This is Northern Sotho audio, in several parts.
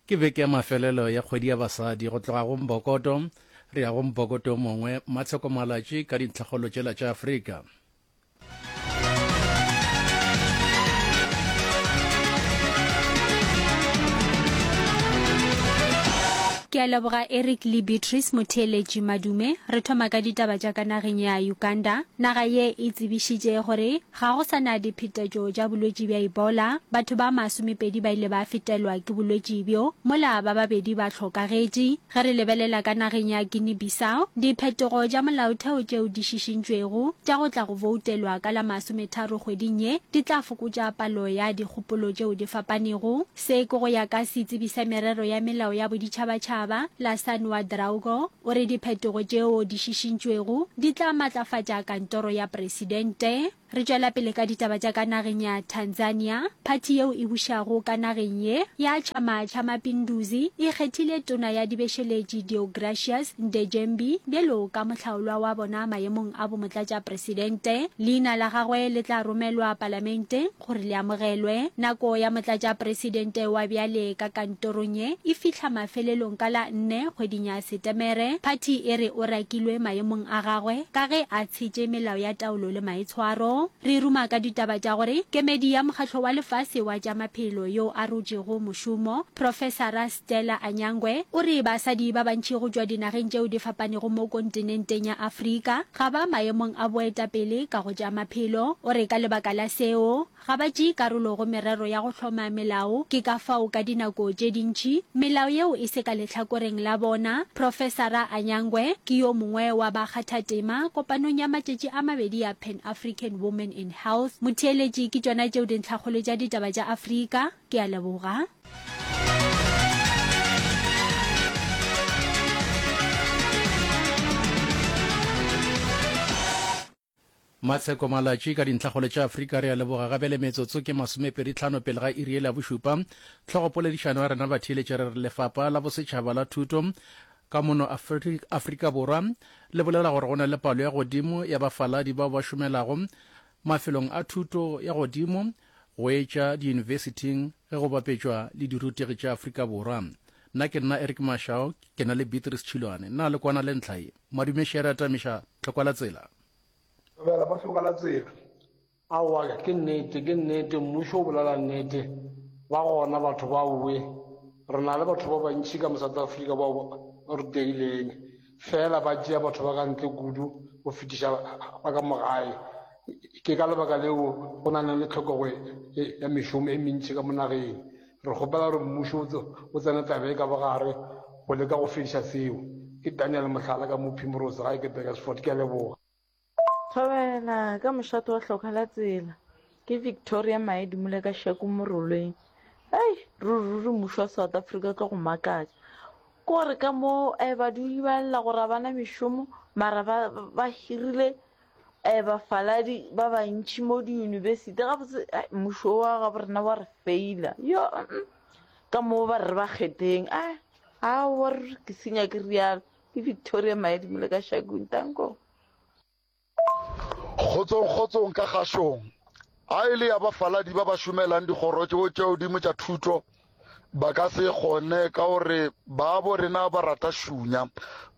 Ke beke ya mafelelo ya kgwedi ya basadi. Go tloga go mbokoto re ya go mbokoto o mongwe, Matsheko Malatši ka dintlhakgolo tšela tša Afrika. ke a leboga eric le beatrice motheeletši madume re thoma ka ditaba tša ka nageng ya uganda naga ye e tsebišitše gore Ga go sa na diphetetšo tša bolwetši bja Ebola. Batho ba masomepedi ba ile ba fetelwa ke bolwetši bjo, mola ba babedi ba hlokagetše. Ge re lebelela ka nageng ya Guinea-Bissau, diphetogo tša molaotheo tšeo di šišintšwego tša go tla go boutelwa ka la masometharo kgweding ye di tla fokotša palo ya dikgopolo tšeo di fapanego. Se ke go ya ka setsebi sa merero ya melao ya boditšhabatšhaba, Lassane Ouadraogo. O re diphetogo tšeo di šišintšwego di tla matlafatša kantoro ya presidente. Re tšwela pele ka ditaba tša ka nageng ya Tanzania. Phathi yeo e bušago ka nageng ye ya Chama cha Mapinduzi e kgethile tona ya dibešeletši Deogratius Ndejembi bjalo ka mohlaolwa wa bona mayemong a bomotlatša presidente. Leina la gagwe le tla romelwa palamenteng. Gore le amogelwe, nako ya Motlatšapresidente wa bjale ka kantorong ye e fihla mafelelong ka la nne kgweding ya Setemere. Phathi e re o rakilwe maemong a gagwe ka ge a tshetše melao ya taolo le maitshwaro. Re ruma ka ditaba tša gore kemedi ya Mokgatlo wa Lefase wa tša Maphelo yo a rotšego mošomo, Profesara. Stella Anyangwe o re basadi ba bantši go tšwa dinageng tšeo di fapanego mo kontinenteng ya Afrika ga ba maemong a boetapele ka go tša maphelo. O re ka lebaka la seo, ga ba tšee karolo go merero ya go hloma melao ke ka fao ka dinako tše dintši melao yeo e se ka lehlakoreng la bona. Profesara Anyangwe ke yo mongwe wa bakgathatema kopanong ya matšatši a mabedi ya Pan African Women in Health. Motheeletši ke tšona tšeo dintlhakgolo tša ditaba tša Afrika, ke a leboga matsheko malatši ka dintlhagole tša afrika re a leboga gape le metsotso ke masomepeditlhano pele ga iri e la bošupa tlhogopoledišano ya rena batheeletše re re lefapa la bosetšhaba la thuto ka mono afrika borwa le bolela gore go na le palo ya godimo ya bafaladi bao ba šomelago mafelong a thuto ya godimo Go etša diyunibesithing ge go bapetšwa le dirutegi tša Afrika Borwa. Nna ke nna Eric Mashao, ke na le Beatrice Tšhilwane. Na le kwana le ntlha ye? Madume še re atamiša Tlhokwalatsela. Dumela mo Tlhokwalatsela. Aowa, ke nnete, ke nnete, mmušo o bolela nnete. Ba gona batho baowe. Re na le batho ba bantši ka mo South Africa bao ba rutegileng. Feela ba tšea batho ba ka ntle kudu go fetiša ba ka mo gae. Ke ka lebaka leo go na le tlhokego ya mešomo e mentši ka mo nageng. Re kgopela gore Mmušo o tsene taba ye ka bogare go leka go fediša seo. Ke Daniel, mohlala, ka mo Primrose gae ke Beresford. Ke a leboga. Thobela ka mošate wa hloka la tsela ke Victoria Mae Dumule ka Shaku Moroleng. Hei, ruri ruri mmušo wa South Africa o tlo go makatša. Ke gore ka mo eh, badudi ba lla gore ga bana mešomo mara ba, ba hirile eh, bafaladi ba bantši mo diyunibesithi gabotse eh, mmušo wa gabo rena wa re feila yo mm, ka moo ba re ba kgetheng a a wa ruri ke senya ke rialo Ke Victoria Maedimo le ka Shakung, Tankong. Kgotsong, kgotsong ka Gashong. A e le ya bafaladi ba ba šomelang dikgoro tšeo tša godimo tša thuto, ba ka se kgone ka gore baabo rena ba rata šunya.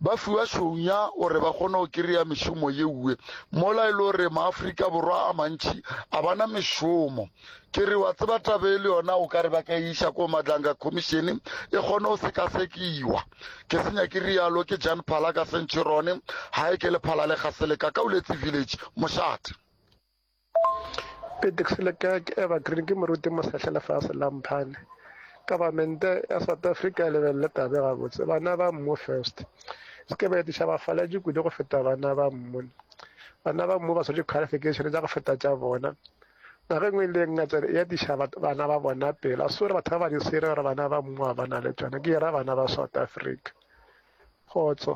Ba fiwa šunya gore ba kgone go kry-a mešomo yeue. Mola e le gore Maafrika Borwa a mantši a bana mešomo. ke re wa tseba tabe e le yona o ka re ba ka e iša ko matlanga khomišene e kgone go sekasekiwa ke senya ke rialo ke jan phala ka sentšhirone ga e ke lephala le gasele ka ka uletse village mošate petexilekaa ke evergreen ke moruti mosetlha lefase la mphane kabamente ya south africa e lebelele tabe gabotse bana ba mmu first se ke ba etiša bafaletše kudu go feta bana ba mmone bana ba mmu ba swetše qualification tša go feta tša bona Nako e nngwe le ngata ya diša bana ba bona pela so re batho ba ba di sere gore bana ba mmoa ba na le tsone ke era bana ba south africa kgotso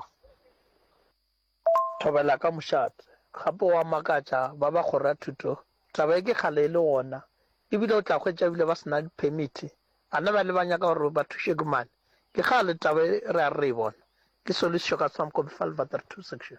thobela ka mošate gape wa makatša ba ba kgoro ya thuto taba e ke kgale e le gona ebile o tla hwetša ebile ba sena diphemiti bana ba le ba nyaka gore ba thuše ke mane ke kgale taba e re a re e bona ke solution ka tshwamkobe fa lebater two section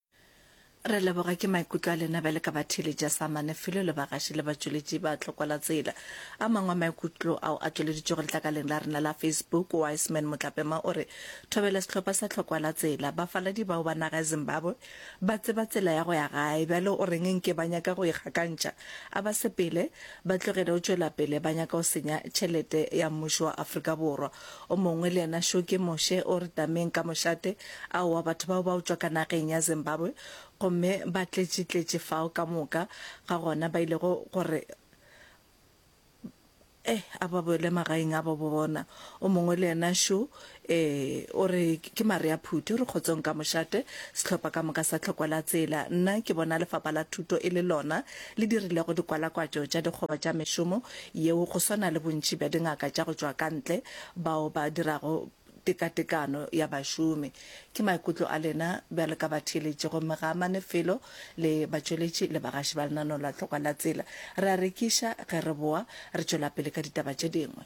Re leboga ke maikutlo a lena bjale ka batheli ja samane felo le bagaši le batšweletši ba tlokwala tsela a mangwe a maikutlo ao a tšweleditšego letlakaleng la rena la facebook wiseman motlapema o re thobela sehlopha sa tlhokwala tsela bafaladi bao ba naga ya zimbabwe ba tseba tsela ya go ya gae bjale o reng nke ba nyaka go ikgakantšha a ba sepele ba tlogele o tšwela pele ba nyaka go senya tšhelete ya mmušo wa afrika borwa O mongwe le yena šo ke Moshe, o re tameng ka mošate. Aowa, batho bao ba otšwa ka nageng ya Zimbabwe, gomme ba tletšitletše fao ka moka ga gona, ba ilego gore eh, a ba boele magaeng a bo bona. O mongwe le yena šo, ee, o re ke mare a phuti, o re kgotsong ka mošate. Sehlopha ka moka sa tlhoko la tsela. Nna ke bona Lefapha la Thuto e le lona le dirilego dikwalakwatšo tša dikgoba tša mešomo yeo go swana le bontši bja dingaka tša go tšwa ka ntle bao ba dirago tekatekano ya bašomi. Ke maikutlo a lena bjalo ka batheeletši gomme ga a amane felo le batšweletši le bagaši ba lenaneo la Tlhokwa la Tsela. Re a rekiša ge re boa re tšwela pele ka ditaba tše dingwe.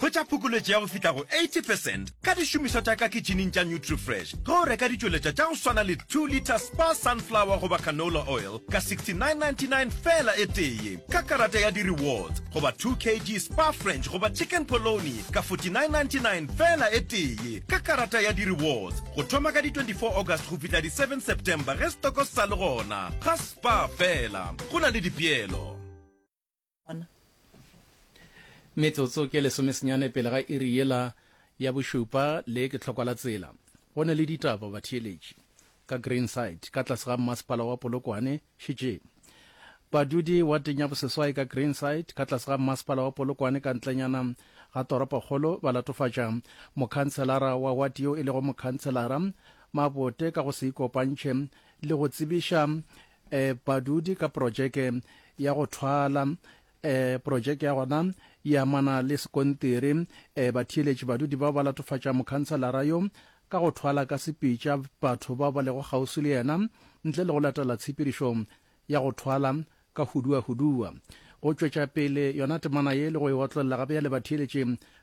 Go tša phokoletšo ya go fihla go 80 percent ka dišomišwa tša ka kitšhining tša Nutrifresh ge o reka ditšweletšwa tša go swana le 2 litre Spa Sunflower goba Canola Oil ka 69.99 feela e tee ye ka karata ya di-rewards goba 2 kg Spa French goba Chicken Polony ka 49.99 feela e tee ye ka karata ya di-rewards go thoma ka di 24 August go fihla di 7 September ge setoko se sa le gona ga Spa feela go na le dipeelo. Metsotso ke lesomesenyane pele ga iri yela ya bošupa le ke tlhokwa la tsela. Go ne le ditaba batheeletši ka Greenside ka tlase ga mmasepala wa Polokwane šetšeng. Badudi wateng ya boseswai ka Greenside ka tlase ga mmasepala wa Polokwane ka ntlenyana ga toropokgolo ba latofatša mokhanselara wa wati yo e lego mokhanselara Mabote ka go se ikopantšhe le go tsebiša e, badudi ka projeke ya go thwala e, projeke ya gona e amana le sekontiri e, batheeletši badudi bao ba latofatša mokhanselara yo ka go thwala ka sepitša batho bao ba lego kgauswi le yena ntle le go latela tshepedišo ya go thwala ka huduahudua go tšwetša pele yona temana ye le go e otlolla gape ya le batheeletši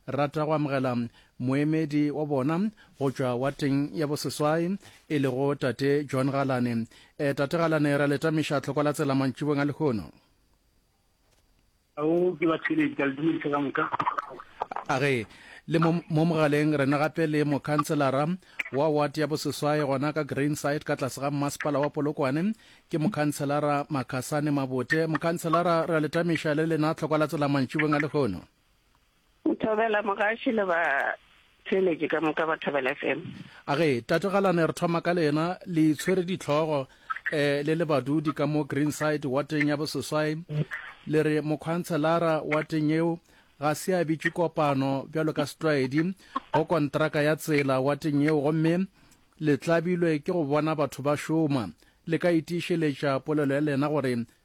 rata go amogela moemedi wa bona go tšwa wateng ya boseswai e lego tate john galane e tate galane ra letamiša tlhoko la tsela mantšibong a lehono ao ke ba theledi ka le dumedisa ka moka a re le mo mogaleng rena gape le mokhanselara wa ward ya boseswae gona ka greenside ka tlase ga mmasepala wa polokwane ke mokhanselara makhasane mabote mokhanselara re a letamiša le lena tlhokwa la tsela mantšibong a lehono Thobela mogaši le ba theeletši ka moka ba Thobela FM. Age tate Galane re thoma ka lena le itshwere ditlhogo eh le le badudi ka mo Greenside wa teng ya boseswai le re mokhantshelara wa teng eo ga se a bitšwe kopano bjalo ka setlwaedi go kontraka ya tsela wa teng eo gomme le tlabilwe ke go bona batho ba šoma le ka itiišeletša polelo ya lena gore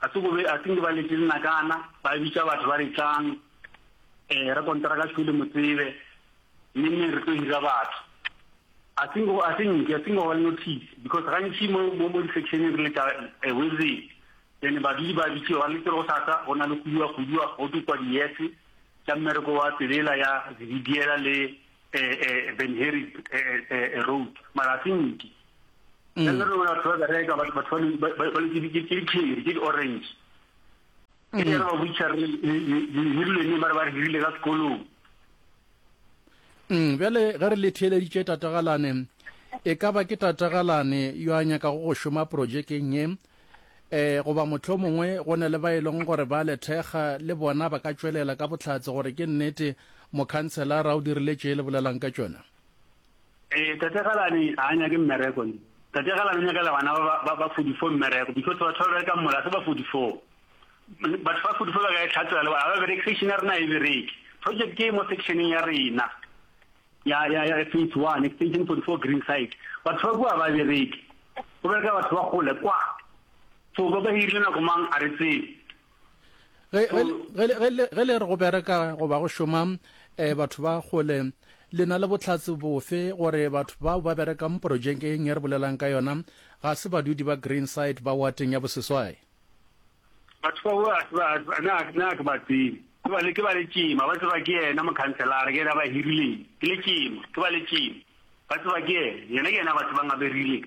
Ga se go be, I think ba letše linakana, ba bitša batho ba re tlang, um re kontara ka tšhwele mo tsebe, mme mme re tlo hira batho. I think go, I think, I think go ba le notice, because gantši mo, mo, mo di-sectioneng re leta a wizit, then badudi ba bitšiwa, ba letse go sasa, go na le khuduwa khuduwa, go tlo kwa diyetse, tša mmereko wa tselela ya Zibidiela le um um Van Herik um um road, mara a se nke. mm. le re batho ba bereka batho ba ke dikheri ke di-orange ke di mm. re ba butšha re hirilene ba re ba re hirile ka sekolong mm, bjale ge re le theeleditše tatagalane e ka ba ke tatagalane yo a nyaka go go šoma projekeng ye eh goba motho mongwe go ne le ba e leng gore ba lethekga le bona ba ka tšwelela ka botlhatse gore ke nnete mokhanselara o dirile tše le bolelang ka tšona Ee, Tate Galane a nyake mmereko ne. Tate Galane o nyakela bana ba ba, ba, ba 44 mmereko because batho ba bereka mola se ba 44. M- Batho ba 44 ba ka e tlhatela le bona ha ba bereke, section ya rena ha e bereke. Project e mo sectioneng ya rena ya ya ya phase 1 extension 44 green side batho ba kwa ba bereke go bereka batho ba gole kwa so ba ba hirile nako mang a re tsebe ge le re go bereka goba go šoma um batho ba kgole le na le botlhatsi bofe gore batho bao ba berekang porojekeng e re bolelang ka yona ga se badudi ba green side ba wateng ya boseswai batho bao na ke ba tsebe ke ba le ke ba le tšema ba tseba ke yena mokhanselara ke yena ba hirileng ke le tšema ke ba le tšema ba tseba ke yena yena ke yena batho ba ngaberileng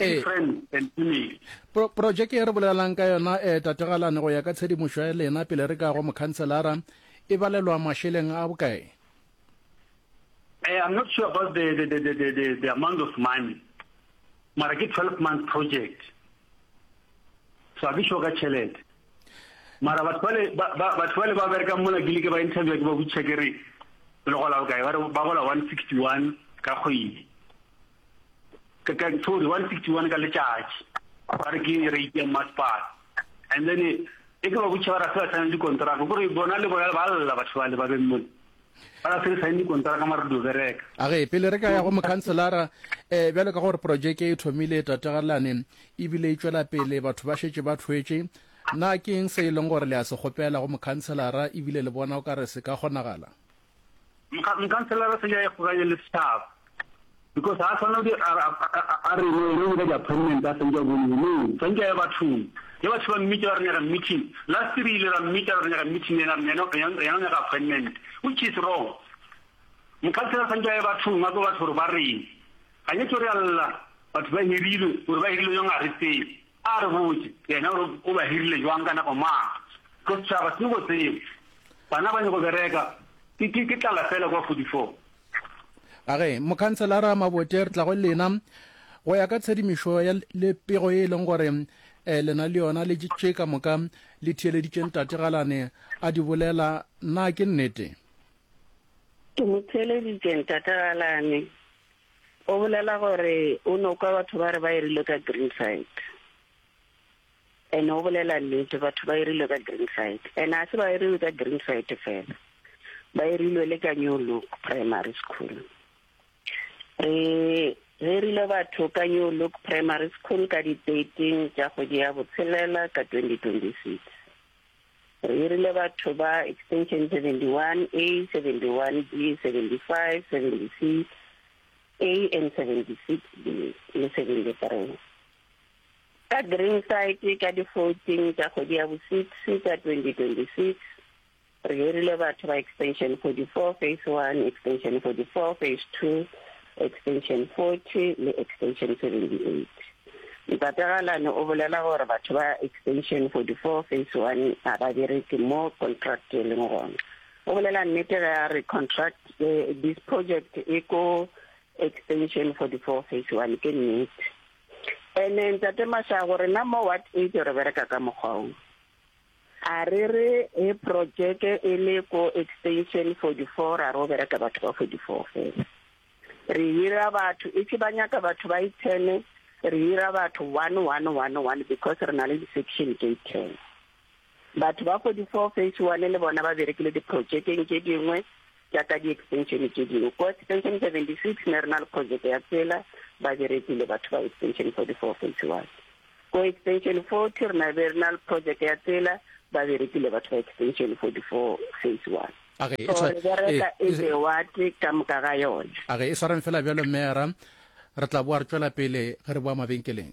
Ee. Pro projeke e re bolelelang ka yona um tategalane go ya ka tshedimošo ya lena pele re ka go mokhanselara e balelwa mašeleng a bokae eh, I'm not sure about the, the, the, the, the, the amount of money mara ke 12 month project so a ke sure ka tšhelete Mara batho bale ba ba batho bale ba berekang mona ke like ba interview ke ba butša ke re le gola bokae ba re ba gola 161 ka kgwedi ka ka sorry 161 ka letšatši ba re ke rate ya masepala and then e ke ba butša ba re ga se ba sign dikontraka kore bona le bona ba lla batho bale ba beng mona ba ga se re saene dikontara ka mare dio bereka a ge pele re ka ya go mokhanselara um bjalo ka gore projeke e thomile tategalane ebile e tšwela pele batho ba šetše ba thwetše na ke eng se e leng gore le a se kgopela go mokhanselara ebile le bona o ka re se ka kgonagala mokhanselara se ya e kgoganye le setšhaba because ha tshwana di a re no ene o di appointment a sentse go ni no tsanke ya batho ya batho ba mmita re nyaka meeting last re ile ra mmita re nyaka meeting ena rena ya nyaka appointment which is wrong mokhansela tsanke ya batho nga go batho ba re ga ne tsore alla batho ba hirile gore ba hirile yong a re tse a re botse yena o ba hirile jwang kana go ma go tshaba se go tseo bana ba nyego bereka ke ke tlala fela kwa 44 A Ge Mokhanselara Mabote re tla go lena. Go ya ka tshedimišo ya le pego e leng gore eh, lena le yona le tše ka moka le theeleditše ntate Galane a di bolela, na ke nnete? Ke mo theeleditše ntate Galane, o bolela gore o no kwa batho ba re ba erile ka Greenside. And o bolela nnete, batho ba irilwe ka green side. And a se ba iriwe ka green side fela, ba irilwe le ka New Look Primary School. Re hirile batho ka New Look Primary School ka di 13 tša kgwedi ya botshelela ka 2026. Re hirile batho ba extension 71A, 71B, 75, 76A and 76B le 73. ka Greenside ka di 14 tša kgwedi ya bo 6 tša 2026, re hirile batho ba extension 44, phase one, extension 44, phase two, extension 40 le extension 78. Ntate Galane o bolela gore batho ba extension 44, phase one, ga ba bereke mo contract e leng gona. O bolela nnete ge a re contract e, this project e ko extension 44, phase one, ke nnete. Ene ntate Mashago rena mo ward eight re bereka ka mokgwa o. A re re he projeke e le ko extension forty four ra ro bereka batho ba forty four fela. Re hira batho e se ba nyaka batho ba e ten re hira batho one one one one because re na le di section tse ten. Batho ba 44 Phase One le bona ba berekile diprotšekeng tše dingwe tša ka diekstenšene tše dingwe. Ko Extension 76 ne re na le projeke ya tsela, ba berekile batho ba Extension 44 Phase One. Ko Extension 40 re na be re na le projeke ya tsela, ba berekile batho ba Extension 44 Phase One. A re e So re tshwa- bereka e- e le wate ka moka ga yone. a re e swareng fela bjalo mmeara re tla boa re tšwela pele ge re boa mabenkeleng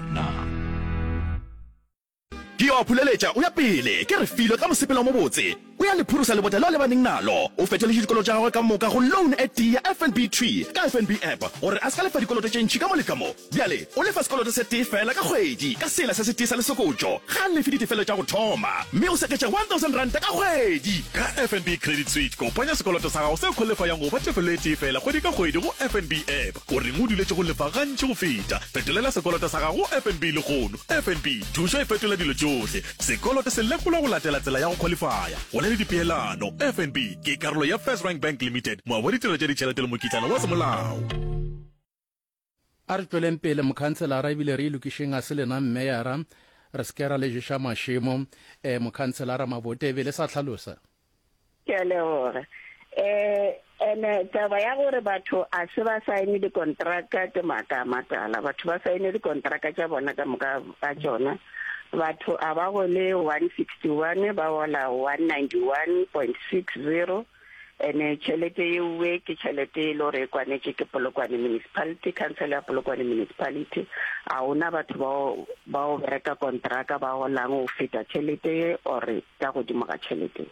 na? Ke yo a phuleletša, o ya pele, ke re filo ka mosepelo o mobotse. O ya le phurusa lebota leo a lebaneng nalo. O fetoletše dikoloto tša gagwe ka moka go loan e tee ya FNB thwi ka FNB app gore a se ka lefa dikoloto tše ntši ka mo le ka mo. Bjale o lefa sekoloto se tee feela ka kgwedi ka sela se setee sa lesokotšo. Ga a lefe ditefelo tša go thoma, mme o seketša one thousand ranta ka kgwedi. Ka FNB Credit Suite, kopanya sekoloto sa gago seo kgolefa ya ngo ba tefelo e tee feela kgwedi ka kgwedi go FNB app. O reng o duletše go lefa gantši go feta? Fetolela sekoloto sa gago go FNB lehono. FNB, thušo e fetola dilo tšohle. Sekoloto se lekolwa go latela tsela ya go khwalifaya. Go na le dipeelano. FNB ke karolo ya FirstRand Bank Limited, moabi wa ditirelo tša ditšhelete le mokitlana wa semolao. A re tšweleng pele mokhanselara ebile re ilokišeng ga se lena mmeyara re se ke ra le ješa mašemo, eh, Mokhanselara Mabote e be le sa hlalosa. Ke a leboga. Eh, ene taba ya gore batho a se ba saene dikontraka ke maaka a matala. Batho ba saene dikontraka tša bona ka moka ka tšona. Batho a ba gole 161, ba gola 191.60. Ene tšhelete yeowe ke tšhelete e le gore e kwanetše ke Polokwane Municipality, Khansele ya Polokwane Municipality. A gona batho bao bao bereka kontraka ba golang go feta tšhelete ye or-re? ka godimo ga tšhelete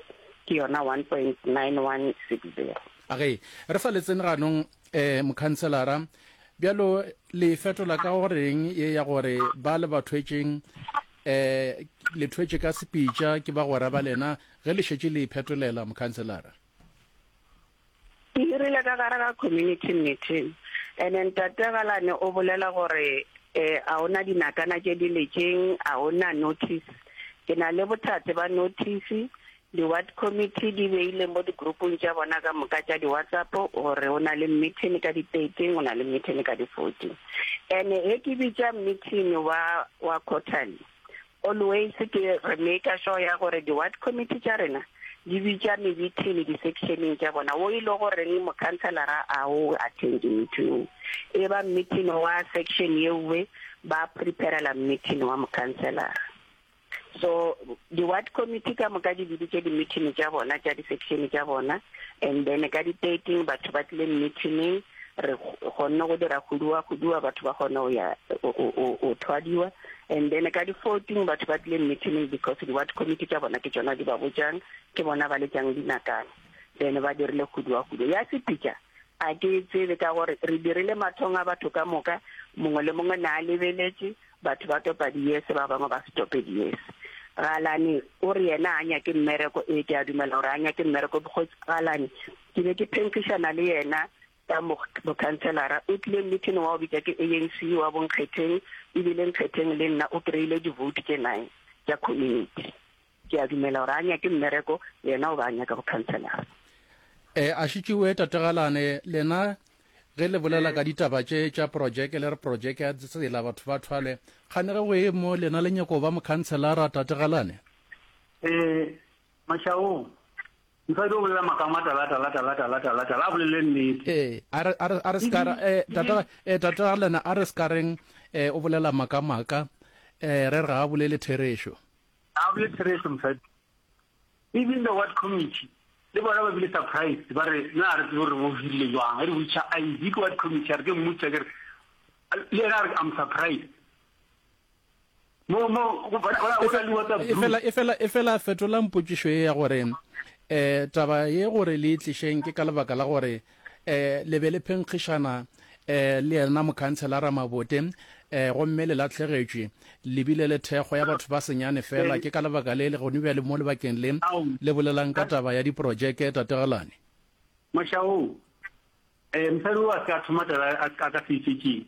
ke yona 1.9160. A ge re sa letsene ganong, eh, Mokhanselara, bjalo le e fetola ka go reng ye ya gore ba le ba thwetšeng, eh, le thwetše ka sepitša ke bagwera ba lena ge le šetše le iphetolela, Mokhanselara? Ke hirile ka gare ga community meeting and then Tate Galane o bolela gore eh a ona dinakana tše di letšeng a ona notice. Ke na le bothate ba notice di ward committee di beile mo di groupong tša bona ka moka tša di WhatsApp gore o na le meeting ka di thirteen o na le meeting ka di fourteen and he ke bitša meeting wa wa quarterly Always ke re maker sure ya gore di ward committee tša rena di bitša mebithini di sectioneng tša bona wo e le goreng mokhanselara a o attend meeting e ba meeting wa section yewe ba preparela meeting wa mokhanselara so di ward committee ka moka di biditše di meeting tša bona tša di section tša bona and then ka di 13 batho ba tlile meeting re kgonne go dira khuduwa khuduwa batho ba kgone go ya o thwadiwa and then ka di-fourteen batho ba tlile meeting because di-ward committee tša bona ke tsona di ba botšang ke bona ba letšang dinakana then ba dirile khuduwa khuduwa ya sepitša a ke tsebe ka gore re dirile mathong a batho ka moka mongwe le mongwe ne a lebeletše batho ba topa diyese ba bangwe ba se tope diyese galane o re yena a nyake mmereko e ke a dumela gore a nyake mmereko because galane Ke be ke phenkgišana le yena ka bokhanselara. O tlile mmithini wa go bitša ke ANC wa bonkgetheng, e bile nkgetheng le nna o kry-ile divoutu tše nine tša community. Ke a dumela gore a nyake mmereko, yena o ba a nyaka bokhanselara. E, a šitšiwe Tate Galane, lena ge le bolela ka ditaba tše tša projeke le re projeke ya tsela batho ba thwale kgane ge go e mo lena le nyako ba mokhanselara Tate Galane? E, Mashaong, mosadi o bolela maaka a matala, tala, tala, tala, tala, tala, a bolele nnete. Ee, a re, a re, a re ska ra, eh, tata, eh, tata Galena, a re ska reng, eh, o bolela maaka maaka, eh, re re ga a bolele therešo. A bolele therešo mosadi. Even the ward committee, le bona ba bile surprised, ba re, na re tsebe gore bo hirile jwang, re witcha ID ke ward committee, a re ke mmutsa, ke re, le yena a re, I'm surprised. efela efela fetolang potsišo ye ya gore um taba ye gore le itlišeng ke ka lebaka la gore um le be le phenkgišana um le yena mokhantshelara mabote um gomme le latlhegetšwe lebile le thekgo ya batho ba senyane fela ke ka lebaka le le gone bja le mo lebakeng le le bolelang ka taba ya diporojeke tategelane mašao um mosadi o a se ka thoma taba a ka se itšetšeng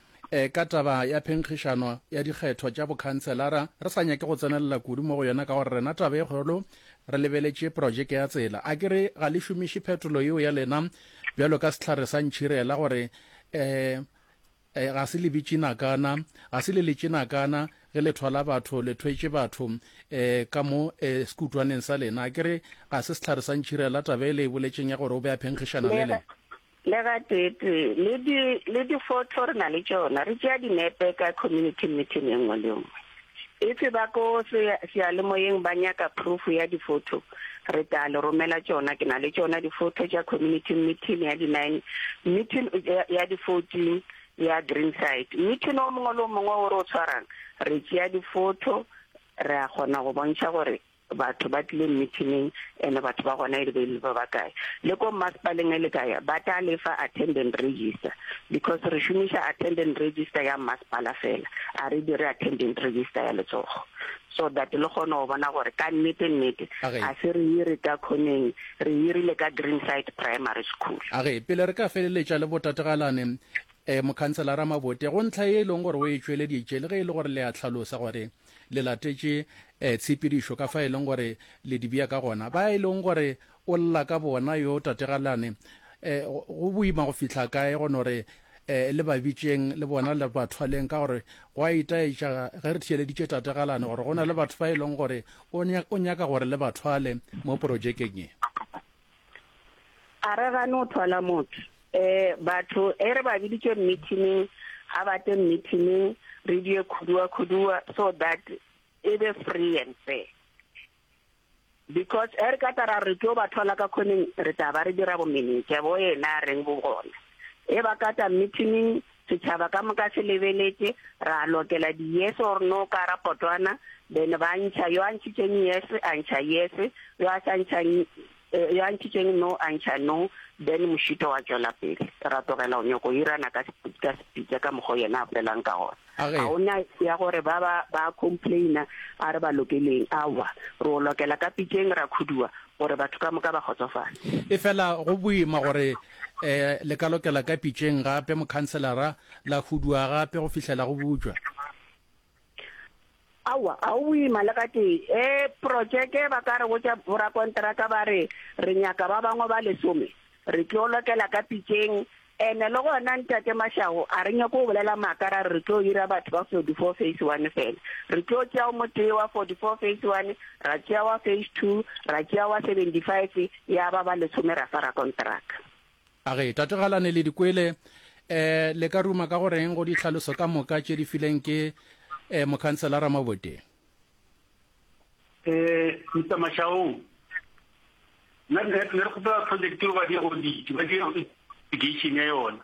E, ka taba ya phenkgišano ya dikgetho tša bokhanselara, re sa nyake go tsenelela kudu mo go yona ka gore rena taba e kgolo re lebeletše projeke ya tsela. A ke re ga le šomiše phetolo yeo ya lena bjalo ka sehlare sa ntšhirela gore e, e, ga se le bitšinakana, ga se le letšinakana ge le thwala batho, le thwetše batho e, ka mo e, sekutwaneng sa lena. A ke re ga se sehlare sa ntšhirela taba e le e boletšeng ya gore o be a phenkgišana le le. Le gateetee, le di, le difotho re na le tšona, re tšea dinepe ka community meeting e nngwe le nngwe. If ba ko sea, seyalemoyeng ba nyaka proof ya difotho, re tla le romela tšona. Ke na le tšona difotho tša community meeting ya di nine, meeting ya, ya di fourteen ya Greenside. Meeting o mongwe le o mongwe o re o tshwarang, re tšea difotho, re a kgona go bontšha gore Batho ba tlileng mithining ene batho ba gona e le be le ba ba kae. Le ko mmasepaleng e le ka ya ba tla le fa attendant register because re šomiša attendant register ya mmasepala fela a re dire attendant register ya letsogo so that le kgone go bona gore ka nnete nnete a se re ire ka khoneng re irile ka Greenside Primary School. Age pele re ka feleletša le botategalane eh, Mokhanselara Mabote, go ntlha ye e leng gore o e tšweleditše le ge e le gore le a hlalosa gore le latetše um tshepedišo ka fa e leng gore le dibea ka gona, ba e leng gore o lla ka bona yo tategalane, um go boima go fihla kae go no re um le ba bitšeng le bona le ba thwaleng ka gore go a itaetša ge re theeleditše tategalane gore go na le batho ba e leng gore o nyaka gore le ba thwale mo porojekeng ye. A re gane o thwala motho. E, batho, e re ba biditšwe mmithining, ga ba tle mmithining, re die khuduwa-khuduwa so that e be free and fair. Because e re ka tara re tlo ba thwala ka khoneng, re tla ba re dira bomenetša bo ena a reng bo gona. E ba kata mmithining, Setšhaba ka moka se lebeletše, ra lokela di yes or no ka ra potwana, then ba ntšha yo a ntšhitšeng yes a ntšha yes, yo a sa ntšhang yo a ntšhitšeng no a ntšha no, then mošito wa tšwela pele. Ra tlogela go nyoko hirana ka ka sepitsa ka mokgo yena a bolelang ka gona. Ga go na ya gore ba ba ba complaina a re ba lokeleng, aowa, re o lokela ka pitšeng ra khuduwa gore batho ka moka ba kgotsofale. Efela go boima gore E, le ka lokela ka pitšeng gape, mokhanselara, la huduwa gape go fihlela go butšwa. Aowa, ga go boima le gatee. E, protšeke, ba ka re botša borakonteraka ba re, Re nyaka ba bangwe ba lesome. Re tlo lokela ka pitšeng. And le gona, Ntate Mashaho, a re nyake go bolela maaka ra re re tlo hira batho ba forty-four phase one fela. Re tlo tšea o motee wa forty-four phase one, ra tšea wa phase two, ra tšea wa seventy-five, Ya ba ba lesome ra swara konteraka. A re, Tate Galane le di kwele, eh, le ka ruma ka go reng go ditlhaloso ka moka tše di fileng ke eh, mokhanselara Maboteng? Eh, Mr. Mashaong, nna ne ne re kgopela project eo ba dire audit, ba dire investigation ya yona.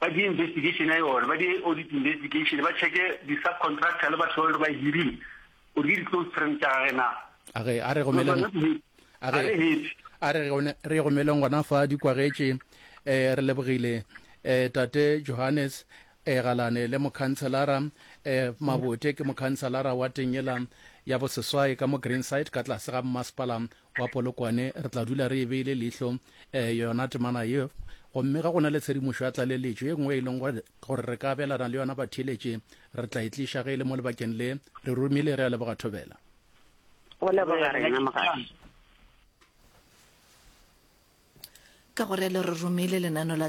ba di investigation ya yona, ba di audit investigation, ba checke di subcontractor le batho ba lore ba e hirile gore ke di close friend tša gage na. A re a re romeleng a re a re re romeleng gona fa di kwagetše eh re lebogile eh tate Johannes e eh, galane le mokhanselara um eh, mabote ke mokhanselara wa tengela ya boseswai ka mo greenside ka tlase ga mmasepala Kwa Polokwane re tla dula re e beile leihlo eh, yona temana ye, gomme ga go na le tshedimošo ya tlaleletšo ye nngwe e leng gore re ka abelana le yona batheeletši, re tla e tliša ge e le mo lebakeng le. Re romile, re a leboga Thobela. O leboga rena mogadi. Ka gore le re romile lenano la